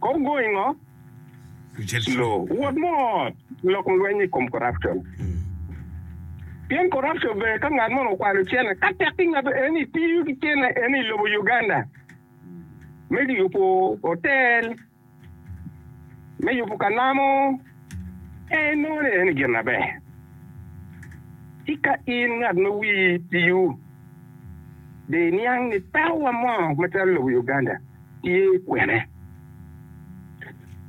Kong go ingo? Lo wot mot lok lweny i kom corruption. Pien corruption ber ka ngat mono okwalo cene ka tek ki ngato eni tiyo ki cene eni i lobo Uganda me yubo hotel, me yubo ka namo en inongo ni en i gin aber. Tika in ngat ma wii tiyo dong iniang ni pekowa mo macalo lobo Uganda tye kwene?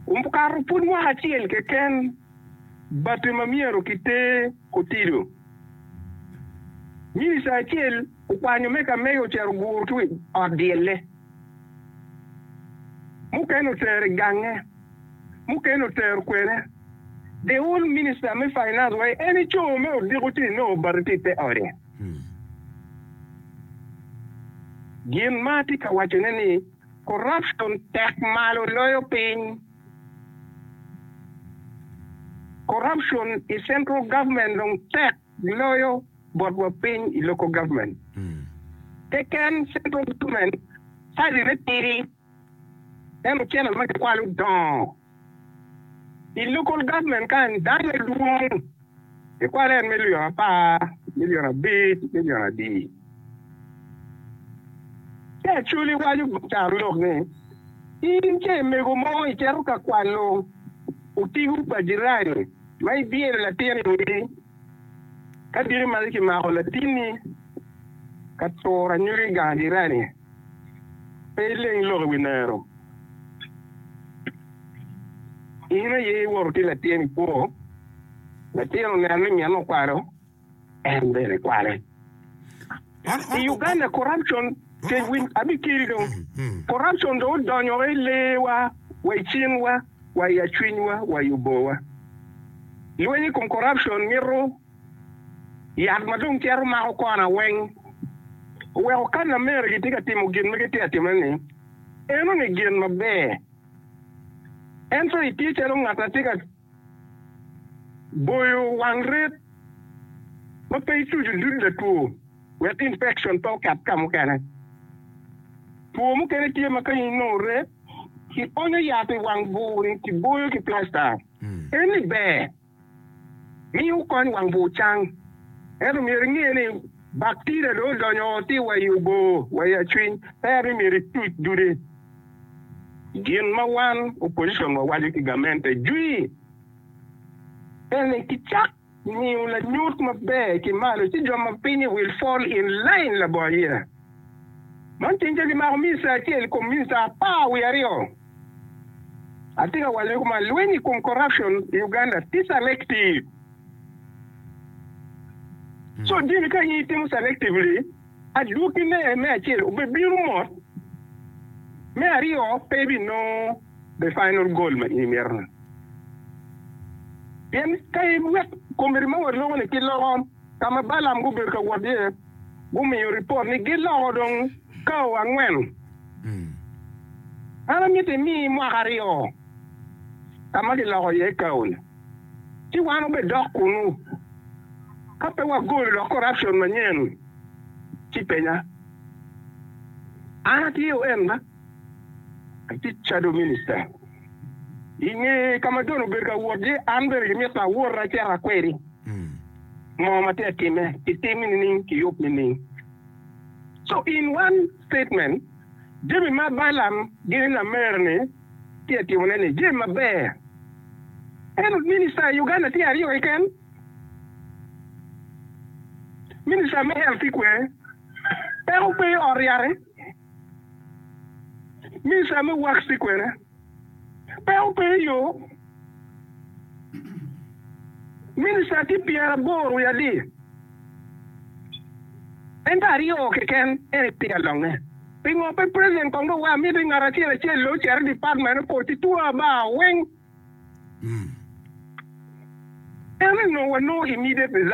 Okato pud mwaka acel keken bati ma myero kiter otido, minista acel okwanyo me ka mege ocito oguro ki wi ot dyelle. Mukene otero i gange, mukene otero kwene. The old minister me finance wa en i co me odiko ci inongo obati tye i te ode. Gin ma atye ka waco ne ni corruption tek malo loyo piny. Corruption i central government dong tek Giloyo botwa piny i local government keken, central government size ne tidi en ocene ma gikwalo dongo. I local government ka en dano ne dwong gikwalo en million apar, million abic, million adi. Ci actually waco carolok ni in ce mego mo icito ka kwano otigo pa jirani, Ma ibyelo latin i odi, ka diki malo kimako latinni ka turo anyogi gang jirani, pe ileng lok i wi nero. In aye iwoto ki latin i kwo, latin oneno ni minne okwalo. en bene kwale. I Uganda corruption kec winy abi kiri dong. Corruption dong odonyo wa i lee wa, wa i cing wa, wa i acwiny wa, wa i oboo wa. Lweny i kom corruption mito yat ma dong cito mako kona weng. Oweko ka lamere gitye ka timo gin ma gitye ka timone ni enoni gin maber ento itye calo ngat ma tye ka Boyo wang ret ma pe ituco dud latwo wek infekcon pe oket ka mukene. Two mukene tye ma ka inongo ret, kionyo yat i wang bur-ri kiboyo ki plasta. Enni ber ni wukony wang bur cang. Ento myero inge ni baktida dong odonyo oo ti wa i oboo wa i acwiny, pera ni myero ituc dude. Gin ma wan, opposition, wawaco ki gamente jwi en ni kicak miyo lanyut maber ki malo ci jo ma pinyi will fall in line labongo ayira. Man ceng ca kimako minista acel ikom minista apar wiye aryo. Atye ka wacone kuman lweny ikom corruption i Uganda tye selective. So jami ka in itimo selectively, Adwogine me acel obibino mot, me aryo pe ibinongo the final goal ma in imito ni. Pien ka iwek committee ma waloko ni ki loko ka ma Balaam gubedo ka wot iye, gumiyo report ni giloko dong kao angwen. An amito imi mwaka aryo ka ma giloko iye kao ni. ci wan wubidok kunnu. Ka pe wagolo lok korapcion manyen, ci penya. An atye oen ma atye cado minista. I nge ka ma John obedo ka wot iye, an bene gimito awot acito akwedi moo ma tye ka timme, kitim nining, kiyub nining. So in one statement. Jami ma Balaam gin ni lamer-ni tye ka timone-ni jami maber. Ento minista i Uganda tye aryo keken, Minista me Health ki Kwer, peko pe i ot ryate, Minista me Works ki Kwena. pe obedo yo Minista tye pyeraboro wiye adir, ento aryo keken en tye ka longe. Pingo pe President kong dong wa miti ngat acel acel lo ocito i department opoti two about weng? En onongo wanongo immediate result.